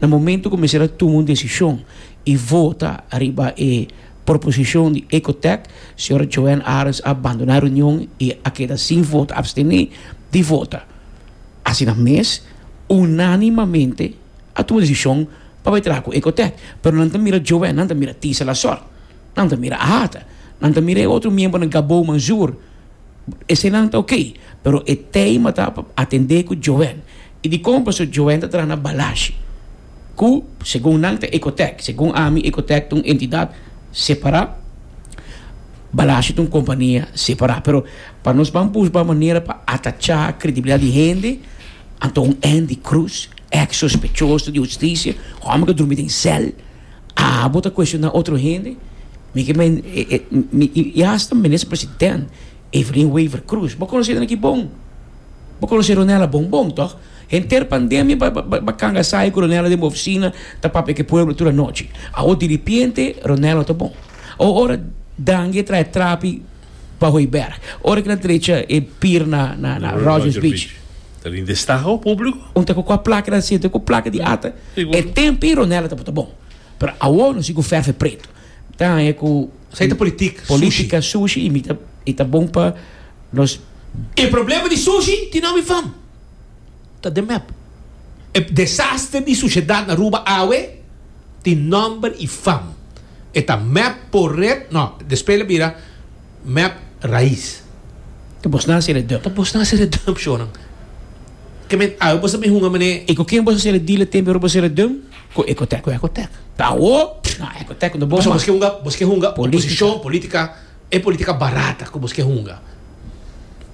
Na momento cu mester a tuma un decision y vota ariba e proposicion di Ecotec, Sra. Joanne Arends a bandona e reunion y a keda sin vota, abstene di vota. Asina mes, unanimamente a tuma decision pa bay traha cu Ecotec. Pero nan ta mira Joanne, nan ta mira Tisa Lasort, nan ta mira Ahata, nan ta mira e otro miembronan Gabou Manzoor, Esenan ta ok, pero e tema ta pa atendé ku Joen. I dikon paso Joen ta traha na Balashi, ku segun nan ta Ecotec, segun ami Ecotec ta un entidat separá, Balashi ta un kompania separá. Pero pa nos ban busba manera pa atachá kredibilidat di hende, anto un Andy Cruz, ex sospechoso di hustisia, homber ku a drumi den sèl, Aa bo ta cuestioná otro hende? Mi ke men i hasta minister president Evelyn Wever Croes. Bo conocenan aki bon. Bo conoce Ronella bon bon, toch? Henter pandemia ba canga sayo cu Ronella den bo oficina ta papia cu e pueblo tur anochi. Awor diripiente Ronella ta bon. Awor ora Dangui a traha e trapi. pa Hooiberg. Ora ki nan trecha e pir na Rogers Beach. Ta bin destaha o publico. Un ta cu coha placa nan sinta cu placa di ata. E tempi Ronella ta bota bon. Pero awor nos sigu ferfe preto. Mi ta hanja cu. Esai ta politic, sushi. Politica, sushi y mi ta bon pa nos. E problema di sushi tin nomi fam. ta den mep. E desaster di sushedad na Aruba awe tin nomber y fam. E ta mep por red no, despe lo bira mep raiz. Ta bos na hacer e dump. Ta bos na hacer e dump shonan. Ke men awe bos ta bin hunga mane. Y ku ken bos ta hacer e deal e tempe ora bos hacer e dump? Ku Ecotec. Ku Ecotec. Ta awor? No, Ecotec no bon mas. Pasobra bos ke hunga, bos ke hunga oposicion, politica. E politica barata cu bo ske hunga.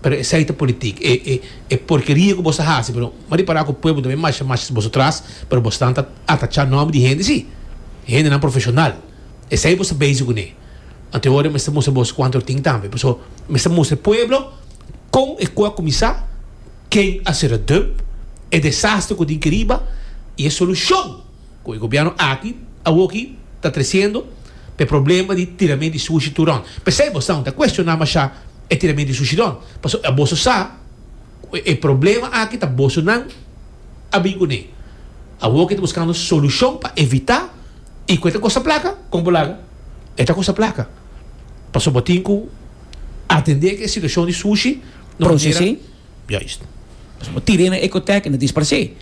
Pero esai ta politic. E e e porkeria cu bo sta haci. Pero ma ripara cu pueblo tambe masha masha boso tras. Pero bo stan ta atacha nomber di hende si. Hendenan profesional. Esai bo sta bezi cune. Anto ora mester mustra boso cuanto lo tin tambe. Paso mester mustra e pueblo con e cu a cuminsa, ken a cera dum, e desastre cu tin cariba y e solucion. Ku e gobièrnu aki awoki ta tresiendo pa e problema di tiramento di sushi tur rònt. P'esei boso ta kuestioná mashá e tiramento di sushi rònt, pasobra a boso sa ku e problema aki ta boso nan a bin kuné. Awoki ta buskando solushon pa evitá i ku e ta kosta plaka, kon bo laga? E ta kosta plaka, pasobra bo tin ku atendé ku e situashon di sushi. Juist. Pasobra tira e na ecotec e na disparse.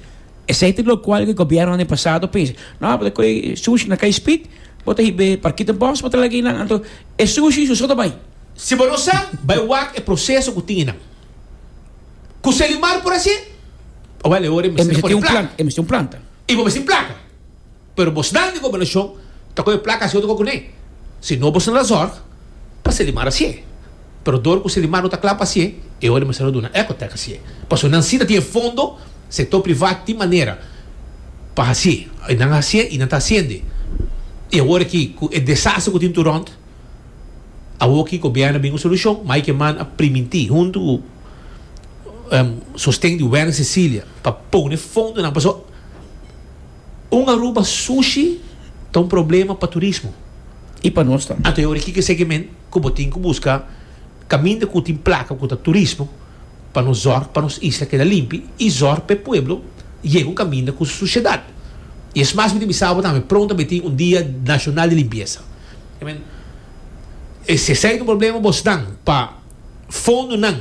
Esey ta locual cu e gobierno ane pasado a pensa, No, bo ta coge sushi na Kei Spit, bo ta hiba e Parkita Bos pa traha lag'ey nan, anto e sushi su so ta bay. Si bo no sa, bay wak e proceso cu tin e nan. Cu Selimar por haci, owel e ora e mester na pone plaka. E mester un planta. Y bo mester placa. Pero bos nan di gobernashon ta kohe plaka así oto kua kuné. Si no bos no ta zorg pa Selimar hasié. Pero dor ku Selimar no ta kla pa hasié, e ora mester no duna Ecotec hasié. Pasobra nan sí ta tin e fondo, sektor privat tin manera pa hasié. I nan a hasié i nan ta hasiende. I awor aki ku e desaster ku tin tur rònt, awor ki gobièrnu a bin ku solushon, mai ke man a primintí huntu ku sosten di Werner Cecilia pa pone fondonan pasobra. Un Aruba sushi ta un problema pa turismo. I pa nos tambe. Anto e ora kiko eseki men ku bo tin ku buska kaminda ku tin plaka ku ta turismo pa nos zorg pa nos isla keda limpi i zorg pa e pueblo yega un kaminda ku su sushedat. I es mas mi ta bisa bo tambe pronta bo e tin un dia nashonal di limpiesa. I mean e si esei ta un problema bos nan pa fondonan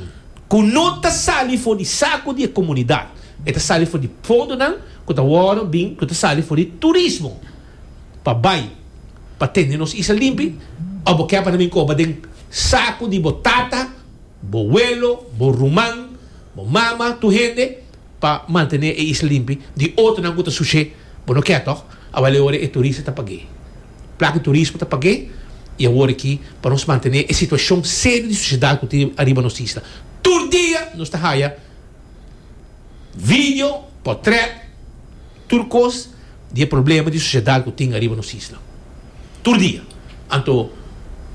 ku no ta sali for di saku di e komunidat e ta sali for di fondonan. ku ta wòrdu bin ku ta sali for di turismo pa bai pa tende nos isla limpi òf bo kè pa na minkoba den saku di bo tata, bo welo, bo ruman, bo mama, tur hende pa mantené e isla limpi di otronan ku ta sushé, bo no kè tòg? Awor e ora e turista ta pag'é. Plaki turismo ta pag'é i awor aki pa nos mantené e situashon serio di susiedat ku tin ariba nos isla tur dia nos ta haya. video, potret, tur kos di e problema di susiedat ku tin ariba nos isla. Tur dia. Anto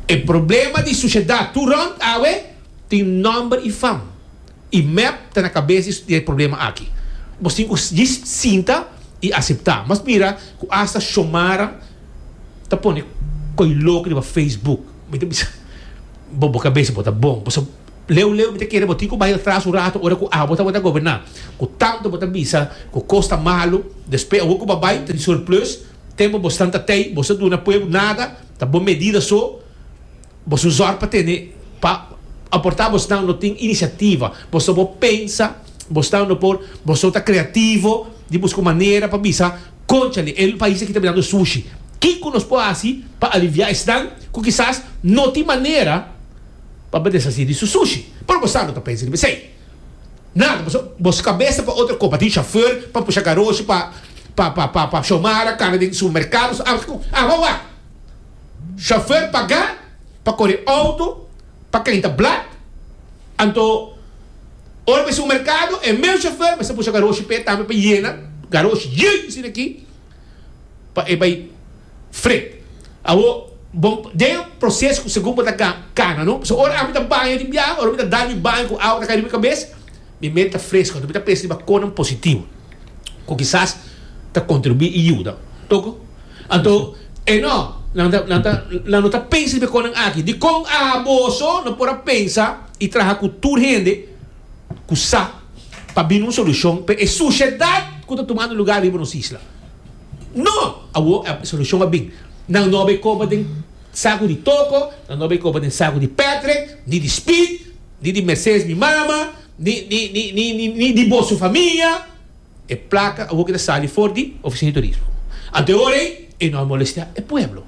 e problema di susiedat tur rònt awe tin nòmber i fam. I mep ta na kabes di e problema aki. Nos tin ku djis sinta i aseptá. Mas mira ku asta Shomara ta pone koilok riba Facebook. Mi ta bisa, Bo bo kabes bo ta bon. Leu leu mi ta kere bo tin ku bai atras un ratu ora ku abo tabata goberná, ku tantu bo ta bisa ku kos ta malu, despues awor ku bo a bai ta di surplus, tempu bo santa tei, boso a duna pueblo nada, ta bo medida so, boso un zòrg pa tene pa aportá, bosnan no tin inisiativa, boso bo pensa, bosnan no por, boso ta kreativo di buska un manera pa bisa konchale e pais aki ta bin dando sushi, kin ku nos por hasi pa aliviá esnan ku kisas no tin manera. Pa bo desasi di su sushi. Pero bo sano ta pensa riba esei. Nada paso. Bo skabes ta pa otro kopa. Tin shofèr pa pusha garoshi pa pa Shomara kana den supermerkado su algu kon. Aba wak. Shofèr pagá pa kore outo pa kenta blat. Anto ora bo e supermerkado e mes shofèr mester pusha garoshi p'e tambe pa yena garoshi. Yey mi sina aki. pa e bai fre. Awor, bo, den e proces cu segun bo ta ga, cana, no? So ora ami ta baña di biaha, ora mi ta dal mi baño cu awa ta cay riba mi cabes, mi mente ta fresco, anto mi ta pensa riba conan positivo cu kisas ta contribui y yuda. Oko? Anto, e no, nan ta, nan ta, nan no ta pensa riba e conan aki. Dicon abo so no por a pensa y traha cu tur hende ku sa pa bini un solushon pa e sushedat ku ta tumando lugá riba nos isla. No! Awor e solushon a bin. Nan no a bai koba den saku di toko, nan no a bai koba den saku di pètrek, ni di spit, ni di Mercedes mi mama, ni di bo su famia. E plaka a hopi ta sali for di Oficia di Turismo. Anteorei e no a molestea e pueblo.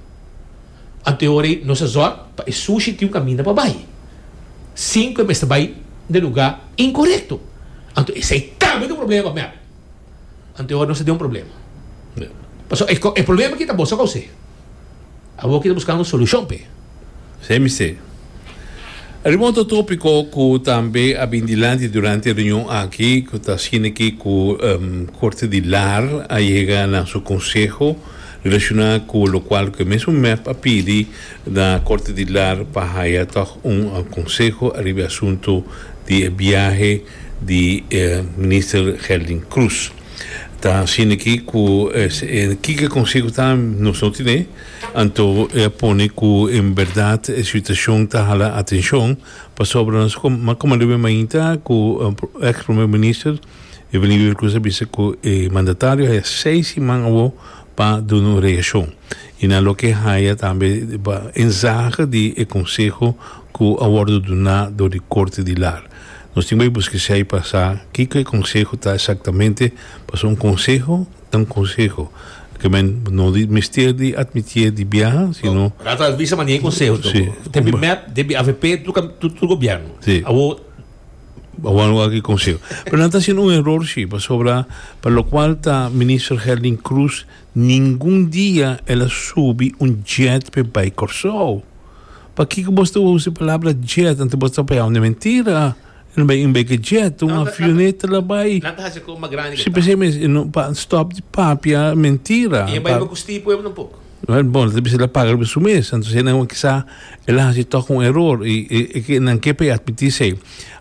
Anteorei nos a zorg pa e sushi tin un kaminda pa bai, sin ku e mester bai den luga inkorekto. Anto esei tambe ta un problema, mèp. Anteorei nos a den un problema. Pasobra e problema ki ta boso kousei. Awor ki ta buska un solushon p'e. Esei mester. Ariba otro topiko ku tambe a bin dilanti durante e reunion aki ku ta asina ki ku Korte di Lar a yega na su konseho relashoná ku lokual ku e mesun mep a pidi na Korte di Lar pa haya tòg un konseho ariba e asuntu di e biahe di Minister Gelding Cruz. Ta asina aki ku e kiko e konseho ta nos no tene, anto e a pone ku en bèrdat e situashon ta hala atenshon pasobra nos a komandá awor mainta ku èks Primero Minister Evelyn Wever Croes a bisa ku e mandatario haya seis siman awor pa duna un reakshon i nan loke haya tambe ba enzahe di e konseho cu a wordo duna dor di Corte di Lar. Nos tin bay buskesha y pasa kico e conseho ta exactamente, pasobra un conseho ta un conseho. Aquel men no di mester di admitié di biaha, sino. Rato a bisa mania e conseho ta cu ta bin mep den avp tur tur gobierno. Si. Awor. Awor no aki conseho. Pero nan ta haciendo un error si, pasobra pa locual ta Minister Herlin Cruz ningun dia el a subi un jet pe bay Corsou. Pakiko bos ta usa e palabra jet anto bos ta payao na mentira? E no bai un beke jet, un avioneta la bai. Nan ta hasi koe mas grandi ke ta. Si p'esei mes e no pa stop di papia mentira. I e bai riba ku sti pueblo tampoco. Wèl bon, lo ta bisa el a paga riba su mes, anto esei nan kisa el a hasi tòg un eror i e nan ke p'ei atmití esei.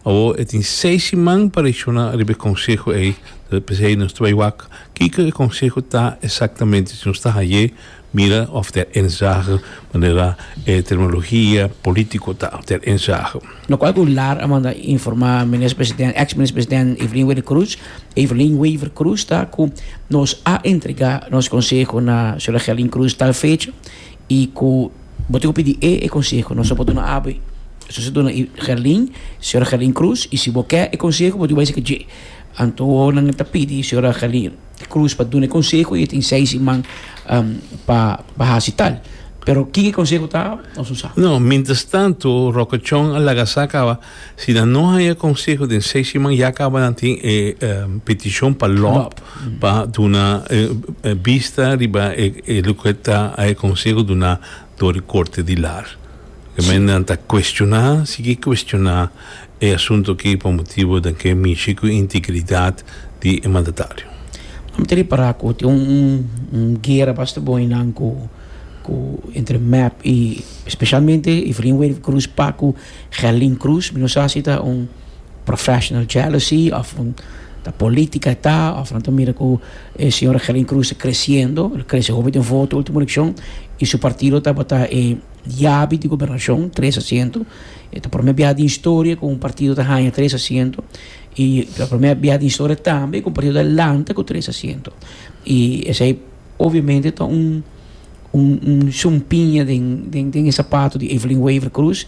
Awo e tin seis siman pa reakshoná riba e konseho ei, p'esei nos ta bai wak kiko e konseho ta eksaktamente si nos ta haye. Mira of ter ensage manera e terminologia politico ta ter ensage. No cual cu lar a manda informa Minister President, ex Minister President Evelyn Wade Cruz, Evelyn Waver Cruz, ta cu nos a entrega nos conseho na Sra. Gelin Cruz tal fecha y cu bo tin cu pidi e e conseho nos a por duna awe. Eso a ser duna Gelin, Sra. Gelin Cruz, y si bo ke e conseho bo tin cu bay seca dje. Anto nan e ta pidi Sra. Gelin. di cruz pa dune conseho y e tin seis iman pa pa haci tal pero kin e conseho ta nos no sa. No, mientras tanto Rocochon a laga sa caba si nan no haya conseho den seis iman ya caba nan tin e peticion pa lop pa duna vista riba e loke ta e conseho duna. dor di Corte di Lar. Ke men nan ta cuestiona, sigui cuestiona e asunto aki pa motibo den ke mishi cu integridad di e mandatario. Nan ta repara cu tin un guera basta bon eynan cu cu entre mep y specialmente Efrain Wery Cruz, Paco, Gelin Cruz, mi no sa si ta un. professional jealousy of ta politica ta of nan ta mira cu e señora Helen Cruz ta creciendo lo crece hopi den voto ultimo eleccion y su partido tabata e yabi di gobernacion tres asiento e ta prome bia den historia cu un partido ta haya tres asiento y ta prome bia den historia tambe cu un partido ta lanta cu tres asiento y esey obviamente ta un un un sumpiña den den den e sapato di Evelyn Wever Cruz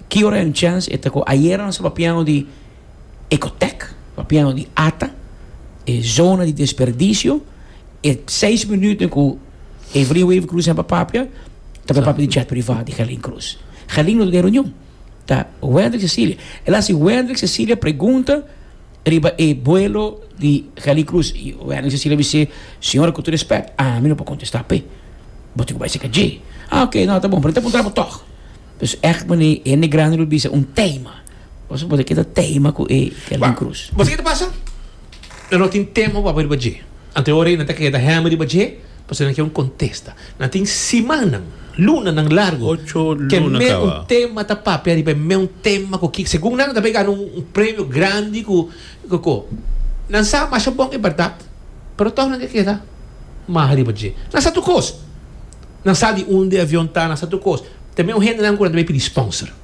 ki ora e un chèns e ta ku ayera nos ta papiando di Ecotec papiando di ata e zona di desperdicio e seis minuten ku Evelyn Wever Cruz a papia ta papia di jet privat di Gerlin Cruz Gerlin no ta den reunion ta Wendrick Cecilia el a hasi Wendrick Cecilia pregunta. Riba e buelo di Geli Cruz y Wendy Cecilia bis'é, Señora cu tur respect, ami no por contesta p'e. Bo tin cu bai cerca dje. Ah ok, no, ta bon, pero no ta puntra bo tog. Pues echt mane e hende grandi lo bisa un tema. Pasobra bo ta keda tema cu e Geli Cruz. Bo sa kico ta pasa? Nan no tin tema cu bo a pone riba dje. Anterior nan ta keda hemi riba dje. Pasobra nan kier un contesta. Nan tin simannan, lunanan largo, cu e meun tema ta papia riba e meun tema cu ki, segun nan, nan ta bay gana un premio grandi cu coco. Nan sa masha bon, e berdad, pero toch nan ke keda maha riba dje. Nan sa tur cos. Nan sa di unda e avion ta, nan sa tur cos. Ta meun hendenan cu nan ta bay pidi sponsor.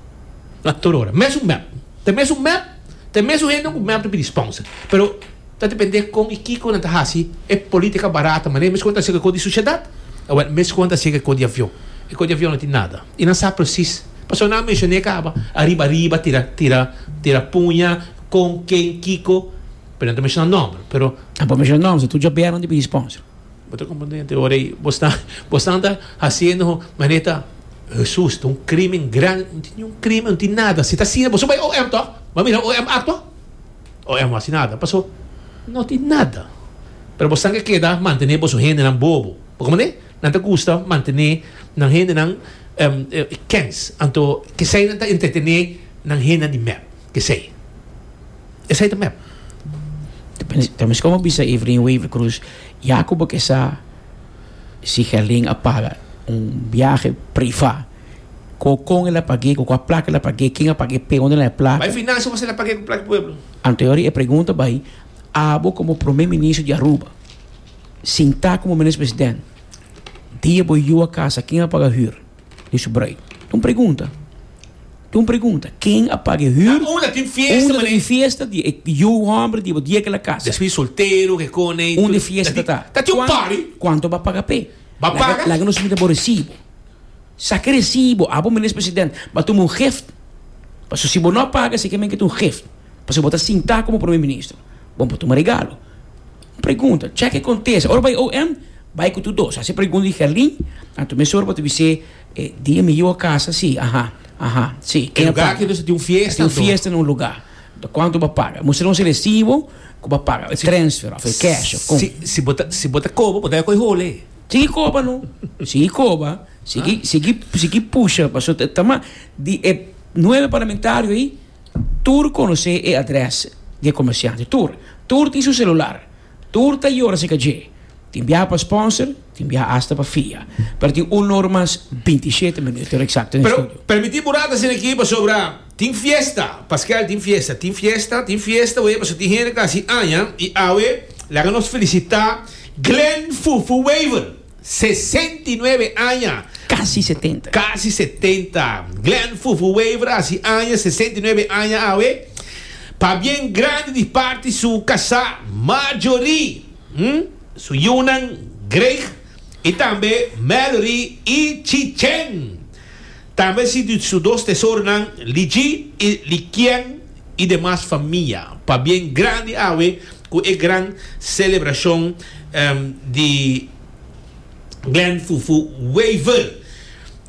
Tur ora. Mesun mep. Ta mesun mep. Ta e mesun hende ku mep ta pidi sponsor. Pero ta depende kon i kiko nan ta hasi e politika barata manera meskuan ta hasi kiko di sushedat owel meskuan ta hasi kiko di avion. E kiko di avion no tin nada. I nan sa presis pasobra nan a menshoné kaba ariba ariba tira tira tira puña kon ken kiko pero nan ta menshoná nòmber pero. Nan por menshoná nòmber pasobra tur djobèr nan ta pidi sponsor. Bo ta komponente ora ei. Bosnan ta hasiendo manera Hesus ta un krimen grandi. No tin niun krimen, no tin nada. Si ta asina boso bai OM to. Bo a mira OM aktua? OM no hasi nada. Paso no tin nada. Pero bosnan ke keda mantene boso hendenan bobo. Por kunda? Nan ta gusta mantene nan hendenan kens. Anto, kesey nan ta entretene nan hendenan di mep. Esei. Esei ta mep. Ta meskos bo bisa Evelyn Wever-Croes, ya ku bo ke sa si Gerlin a paga un biahe privá, ku kon el a pag'é, ku kua plak el a pag'é, ken a pag'é, p'e unda nan e plak. Bai Finasha ku ase el a pag'é ku plak di pueblo. Anteori e pregunta bai, abo komo Prome Ministro di Aruba, sintá komo Minister Presidente, dia bo yu a kasa, ken a paga hür? Dice Bray. Ta un pregunta. Ta un pregunta. Ken a paga e hür? Ta unda tin fiesta, mané? Unda tin fiesta di e yu hòmber di bo di e kila kas? Despues di soltero, ke kone i tur. Unda e fiesta ta ta? Ta tin un party. Kuantu bo a paga p'e? Bo a paga? Laga nos mira bo resibo. Saka e resibo. Abo, Minis President, b'a tuma un gift. Pasobra si bo no a paga, si ke men ke ta un gift. Pasobra bo ta sintá komo Prome Ministro. Bo no por tuma regalo. Pregunta, Tjek e kontesta. Ora bai OM, bai ku tur dos. Hasi pregunta di Gerlin, anto mesora bo ta bis'é, E dia mi yoa kasa, si, aha, aha, si. E lugá akí mester tin un fiesta anto? Ta tin un fiesta na un lugá. Ta kuantu bo a paga? Mustra nos e resibo ku bo a paga, e transfer òf e cash òf kon. Si bo ta, si bo ta koba, bo debe koi hole. Sigui koba no. Sigui koba. Sigui, sigui, sigui pusha paso ta, ta mas di e nuebe parlamentario ei, Tur conoce e adres di e comerciante. Tur. Tur tin su celular. Tur ta yora acerca dje. Tin biaha pa sponsor, tin biaha hasta pa fia. Pero tin un or mas binti y shete minuto exacto den studio. Permiti bura ta sina aki pasobra tin fiesta. Paskel tin fiesta, tin fiesta, tin fiesta wee pasobra tin hende ta haci aña y awe laga nos felicita Glen Fufu Wever Sesenta i nuebe aña. Casi setenta. Casi setenta. Glen Fufu Wever a haci aña, sesenta i nuebe aña awe. Pa bien grandi di parti su casá Marjorie, hm, su yiunan Greg y tambe Mallory y Chichen. Tambe si di su dos tesoronan, li dji i li kien i demas famia, pabien grandi awe ku e gran selebrashon di Glen Fufu Wever.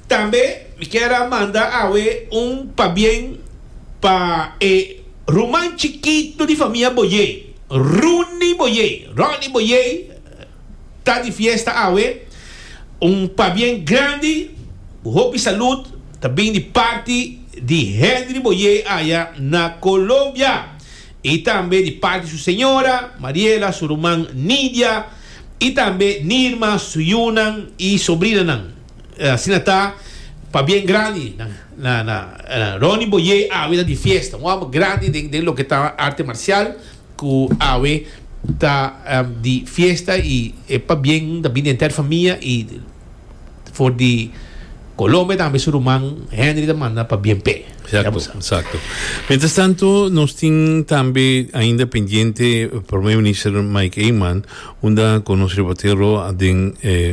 Tambe mi kier a manda awe un pabien pa e ruman chikitu di famia Boyer, Rooney Boyer, Ronnie Boyer, Ta di fiesta awe. Un pabien grandi cu hopi salud ta bin di parti di Henry Boyer aya na Colombia y tambe di parti su señora, Mariela, su ruman Nidia y tambe Nirma, su yunan y sobrinanan. Asina ta pabien grandi na Ronnie Boyer awe ta di fiesta. Un homber grandi den loke ta arte marcial. Cu awe ta di fiesta y e pabien ta bini enter famia y for di Colombia tambe su ruman Henry ta manda pabien p'e. Exacto, exacto. Mientras tanto, nos tin tambe ainda pendiente Prome Minister Mike Eman, unda cu nos reportero den eh,